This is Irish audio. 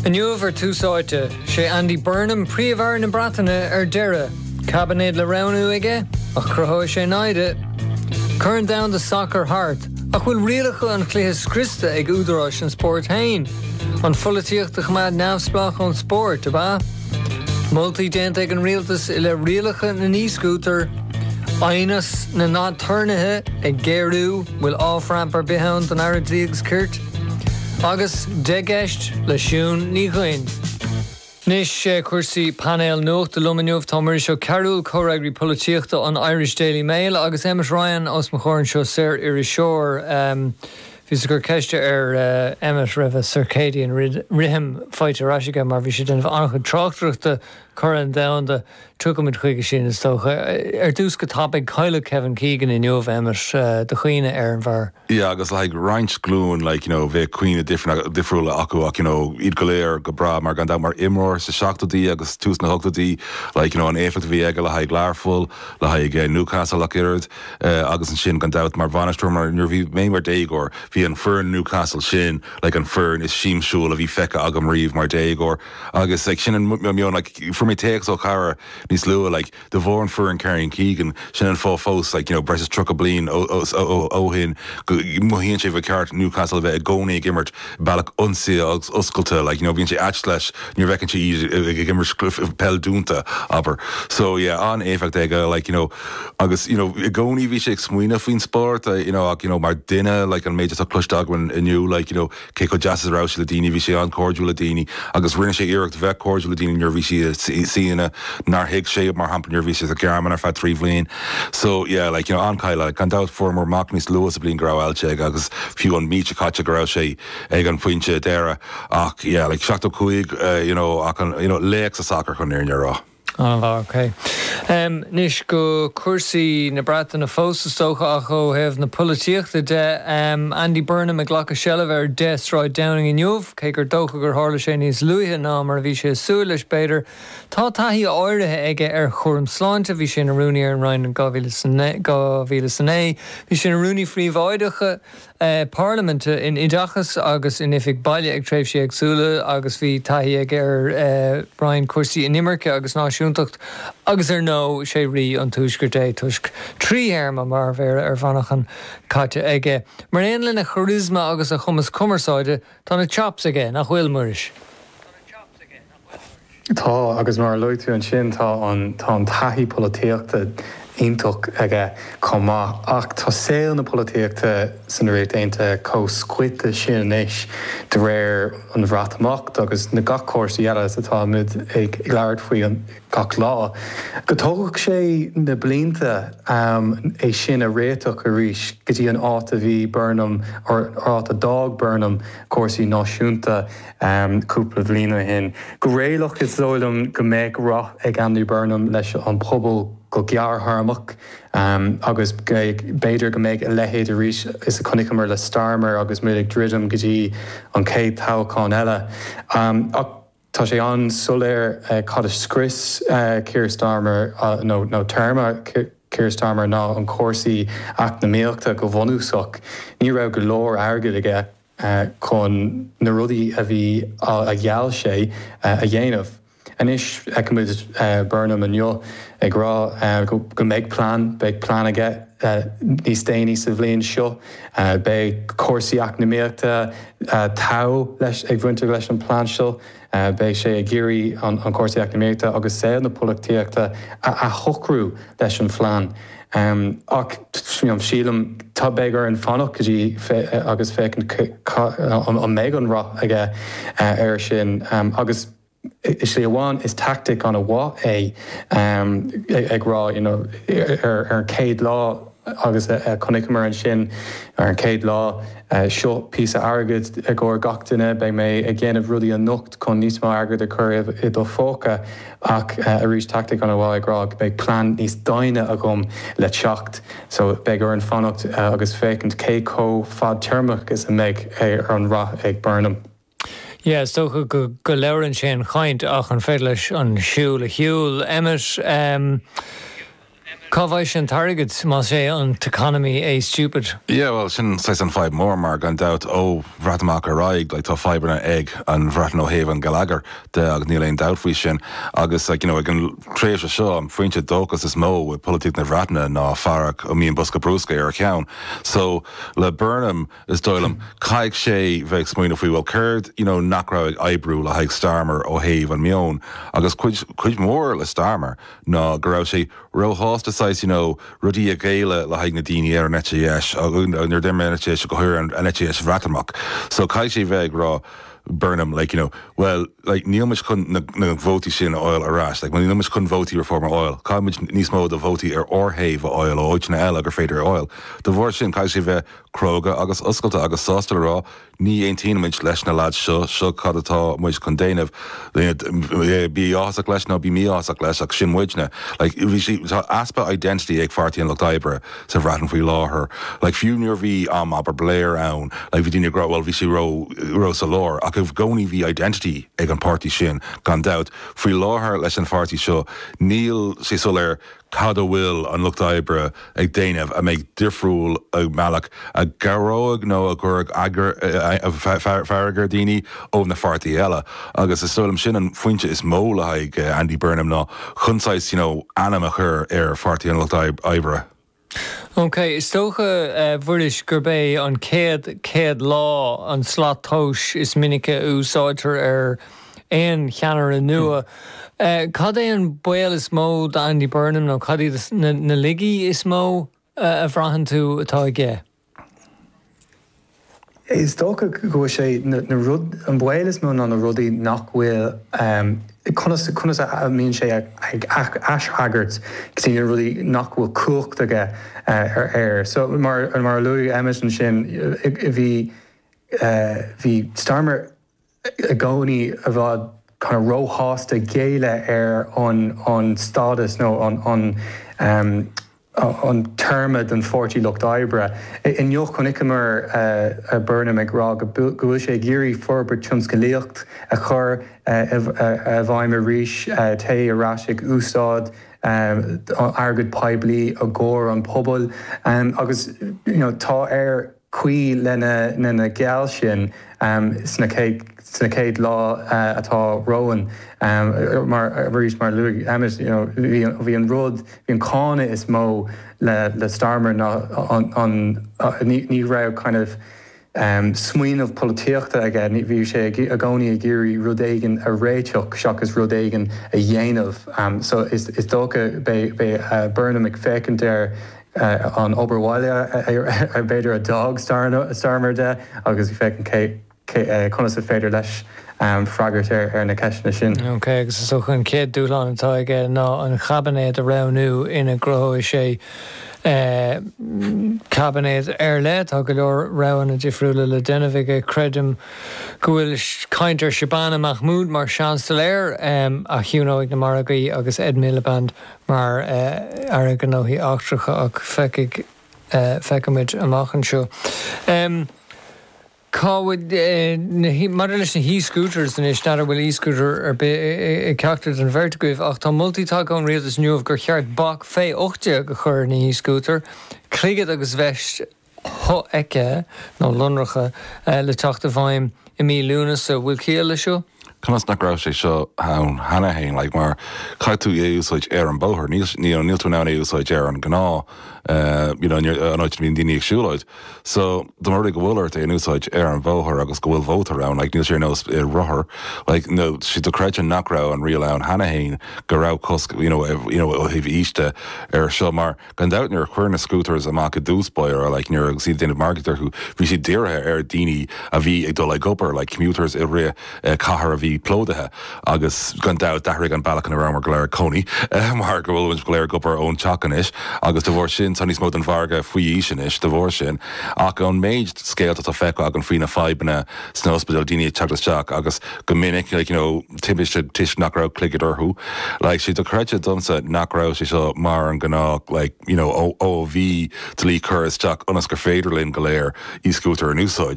Inniu ar Tús Áite, sé Andy Burnham Príomh-Aire na Breataine ar deireadh. Caibinéad le roghnú aige, ach cruthóidh sé naimhde. Corn Domhanda an tSacair thart, ach bhfuil rialacha an chluiche scriosta ag údaráis an spóirt féin? An pholaitíocht a choimeád neamhspleách ón spórt, ab ea? Moltaí déanta ag an rialtas i leith rialacha na n-e-scútar. Aighneas na n-aturnaetha ag géarú, bhfuil off-ramp ar bith ann don Aire Dlí agus Cirt? Agus Dhá Cheist le Siún Ní Dhuinn. Anois cúrsaí, painéal nuachta liom inniu, tá Muiris Ó Cearbhaill, Comhfhreagraí Polaitíochta an Irish Daily Mail agus Emmet Ryan os mo chomhair anseo, saoririseoir. Bhíos ag cur ceiste ar Emmet raibh a Circadian Rhythm faighte ar ais aige mar bhí sé ag déanamh an-chuid tráchtaireachta Corn Domhanda Tiocfaimid chuige sin, is dócha. Ar dtús go tapaidh, cailleadh Kevin Keegan inniu, Emmet do chaoineadh ar an bhfear. Yeah agus le haghaidh roinnt glúin like you know bheadh cuimhní difriúla acu ach you know iad go léir go breá mar gan dabht mar imreoir sa seachtóidí agus tús na hochtóidí like you know an éifeacht a bhí aige le haghaidh Learpholl, le haghaidh eh Newcastle ach oiread eh agus ansin gan dabht mar bhainisteoir mar nuair a bhí mé mar déagóir bhí an foireann Newcastle sin like an foireann is siamsiúil a bhí feicthe agam riamh mar déagóir. Agus like sin an meon like fuair mé téacs ó chara níos luath like de bharr an foireann Kevin Keegan sin an fáth fós like you know breis is tríocha bliain ó ó ó shin go mothaíonn sé ba cheart Newcastle a bheith i gcónaí ag imirt bealach ionsaithe agus oscailte like you know bíonn sé ait leis nuair a bhfeiceann sé iad ag ag imirt peil dúnta abair so yeah an-éifeacht aige like you know agus you know i gcónaí bhí sé ag smaoineamh faoin spórt you know ach you know mar duine like an méid atá cloiste agam inniu like you know Cé chomh deas is a raibh sé le daoine, bhí sé an-cairdiúil le daoine agus rinne sé iarracht bheith cairdiúil le daoine nuair a bhí sé san áit nár thuig sé iad, mar shampla nuair a bhí sé sa Ghearmáin ar feadh trí bhliain. So yeah like you know an-chaill like. Gan dabht fuaireamar amach níos luaithe sa bhliain go raibh ailse aige agus fiú an mí seo caite go raibh sé ag an phointe deireadh ach yeah like seachtó cúig you know ach an you know laoch sa sacar chun an fhírinne a rá. An-fhear. OK. Anois go cúrsaí na Breataine fós, is dócha, ach ó thaobh na polaitíochta de. Andy Burnham ag glacadh seilbhe ar 10 Sráid Downing inniu, cé gur dócha gur tharla sé níos luaithe ná mar a bhí sé ag súil leis b'fhéidir. Tá taithí áirithe aige ar chúram sláinte, bhí sé ina rúnaí ar an Roinn in 2009, bhí sé ina rúnaí príobháideach, Parlaiminte, in Oideachas agus in Oifig Bhaile ag tréimhsí éagsúla agus bhí taithí aige ar Roinn Cúrsaí Inimirce agus Náisiúntacht agus ar ndó is é Rí an Tuaiscirt é toisc trí théarma mar Mhéara ar Mhanchain caite aige. Mar aon lena charisma agus a chumas cumarsáide, tá na chops aige, nach bhfuil, Muiris? Tá, agus mar a luaigh tú ansin, tá an taithí polaitíochta iontach aige chomh maith. Ach tá saol na polaitíochta san Ríocht Aontaithe chomh scoite sin anois de bharr an Bhreatimeacht agus na gach cúrsaí eile is atá muid ag labhairt faoi gach lá, go dtógfadh sé na blianta é sin a réiteach arís go dtí an áit a bhí Burnham, or an áit a d'fhág Burnham cúrsaí náisiúnta. cúpla bliain ó shin. Go réalach is dóigh liom go mbeidh rath ag Andy Burnham leis an pobal go gearrthéarmach agus b'fhéidir go mbeidh a leithéid arís is a chonaiceamar le Starmer agus muid ag druidim go dtí an chéad toghachán eile. Ach tá sé an-soiléir cad a scrios Keir Starmer nó téarma Keir Starmer ná an cúrsaí eacnamaíochta go bhunúsach. Ní raibh go leor airgid aige. chun na rudaí a bhí a gheall sé a dhéanamh. Anois feicimid Burnham inniu ag rá go mbeidh plean, beidh plean aige níos déanaí sa bhliain seo, beidh cúrsaí eacnamaíochta, trom ag baint leis an plean seo. Beidh sé ag iarraidh an cúrsaí eacnamaíochta agus saol na polaitíochta a athshocrú leis an phlean. Ach sílim tá beidh orainn fanacht go dtí agus féachaint an mbeidh an rath aige air sin agus i slí amháin is tactic ana mhaith é ag rá you know ar an chéad lá agus a chonaiceamar ansin ar an chéad lá, Seo píosa airgid i gcomhair gach duine, beidh mé ag dhéanamh rudaí anocht chun níos mó airgid a chur i do phóca ach arís tactic ana mhaith ag rá go mbeidh plean níos doimhne agam le teacht so beidh orainn fanacht agus féachaint cé chomh fadtéarmach is a mbeidh an rath ag Burnham. Yeah, is dócha go labhrann sé an chaint ach an féidir leis an siúl a shiúl? Emmet, em, cá bhfaighidh sé an t-airgead más é an t-economy é stupid? Yeah, bhuel, sin saghas an fadhb mór mar, gan dabht, ó Bhreatimeacht ar aghaidh, like, tá fadhbanna ag an Bhreatain ó thaobh an gheilleagair de agus níl aon dabht faoi sin agus, like, you know, ag an tréimhse seo, an foinse dóchas is mó i polaitíocht na Bhreataine ná fear a mbíonn bosca brúscair ar a cheann. So, le Burnham. is dóigh liom. Caithfidh sé bheith ag smaoineamh faoi, bhuel, céard, you know, nach raibh ag oibriú le haghaidh Starmer ó thaobh an meoin agus cuid, cuid mhór le Starmer ná go raibh sé ró-shásta saghas, you know, rudaí a ghéilleadh le haghaidh na daoine ar an eite dheis, nuair a d'imir an eite dheis, go háirithe an eite dheis Bhreatimeach. So caithfidh sé bheith ag rá, Burnham, like, you know, bhuel, like, níl muid chun na, na vótaí sin a fháil ar ais, like, níl muid chun vótaí Reform a fháil. Caithfidh muid níos mó de vótaí ar ár thaobh a fháil ó áiteanna eile gur féidir a fháil. De bharr sin, caithfidh sé bheith cróga agus oscailte agus sásta le rá ní aontaíonn muid leis na lads seo, seo cad atá muid chun déanamh. Bí áthasach leis nó bí mí-áthasach leis ach sin muidne. Like bhí sé, tá easpa identity ag Páirtí an Lucht Oibre sa Bhreatain faoi láthair. Like fiú nuair a bhí am abair Blair ann like bhí daoine ag rá bhuel bhí sé ró, ró sa lár ach i gcónaí bhí identity ag an páirtí sin gan dabht. Faoi láthair leis an pháirtí seo níl sé soiléir cad a bhfuil an Lucht Oibre ag déanamh a mbeidh difriúil i mbealach a gcabhróidh nó a gcuirfeadh fearg ar dhaoine ó na pháirtithe eile? Agus is dóigh liom sin an phointe is mó le haghaidh Andy Burnham ná chun saghas, you know, ainm a chur ar Pháirtí an Lucht Oibre. Ok, is dócha, a Mhuiris, gurb é an chéad 100 lá an slat tomhais is minice a úsáidtear ar. aon cheannaire nua. Cad é an baol is mó d'Andy Burnham nó cad iad na laigí is mó a bhraitheann tú atá aige? Is dócha go bhfuil sé, na rud, an baol is mó ná na rudaí nach bhfuil, conas, conas a mbíonn sé ag aisfhreagairt go dtí na rudaí nach bhfuil cumhacht aige air. So mar a luaigh Emmet ansin, bhí, bhí Starmer i gcónaí i bhfad kind of ró-shásta géilleadh ar an an stádas nó an an em an téarma den Pháirtí Lucht Oibre. Inniu chonaiceamar eh Burnham ag rá go go bhfuil sé ag iarraidh forbairt tionscalaíocht a chur eh i i bhfeidhm arís eh téigh ar ais ag úsáid em airgead poiblí i gcomhair an pobail em agus you know tá ar caoi lena n-a gceal sin sna céad lá atá romhainn mar arís mar a luaigh Emmet you know bhí an rud bhí an cáineadh is mó le le Starmer ná an ní raibh kind of smaoineamh polaitíochta aige bhí sé i gcónaí ag iarraidh rud éigin a réiteach seachas rud éigin a dhéanamh so is dócha beidh Burnham ag féachaint ar an obair bhaile a b'fhéidir a d'fhág Starmer de agus bhí féachaint cé conas a féidir leis freagairt ar na ceisteanna sin. Ok, agus is dócha an chéad dúshlán atá aige ná an chaibinéad a roghnú ina gcruthóidh sé caibinéad ar leith. Tá go leor roghanna difriúla le déanamh aige. Creidim go bhfuil caint ar Shabana Mahmood mar Sheansailéir a chiúnóidh na margaí agus Ed Miliband mar Aire Gnóthaí Eachtracha, ach feicfidh, feicfimid amach anseo. Cá bhfuil na, maidir leis na hee-scooters anois, n'fheadar an bhfuil e-scooter ar bith ag ceachtar den bheirt agaibh ach tá moltaí tagtha ón Rialtas inniu gur cheart bac fé 18 a chur ar na hee-scooter, clogad agus veist shofheicthe nó lonracha le teacht i bhfeidhm i mí Lúnasa. An bhfuil ciall leis seo? Conas nach raibh sé seo ann cheana féin? Like, mar chaith tú é a úsáid ar an bóthar. Níl, you know, níl tú in ann é a úsáid ar an ngnáth, you know, an áit a mbíonn daoine ag siúlóid. So, de bhrí go bhfuil ort é a úsáid ar an bhóthar agus go bhfuil mótar ann, like, níl sé ar nós rothar, like, sé dochreidte nach raibh an riail ann cheana féin go raibh cosc, you know, you know, ó thaobh aois de ar seo mar, Gan dabht nuair a cuireadh na Scooters amach i dtús báire like nuair agus iad ag déanamh margaíocht orthu bhí siad dírithe ar daoine a bhí ag dul ag obair like commuters i gcathair a bhí plódaithe agus gan dabht d'athraigh an bealach ina rabhamar go léir ag cónaí mar go bhfuilimid go léir ag obair ón teach anois agus de bharr sin tá níos mó den mhargadh faoi aois anois de bharr sin ach ón méid scéalta atá feicthe agam faoi na fadhbanna sna ospidéil daoine ag teacht isteach agus go minic like you know timpiste toisc nach raibh clogad orthu like sé dochreidte domsa nach raibh sé seo mar an gnáth like you know ó ó a bhí dlí curtha isteach ionas gur féidir linn go léir e-scútair a úsáid.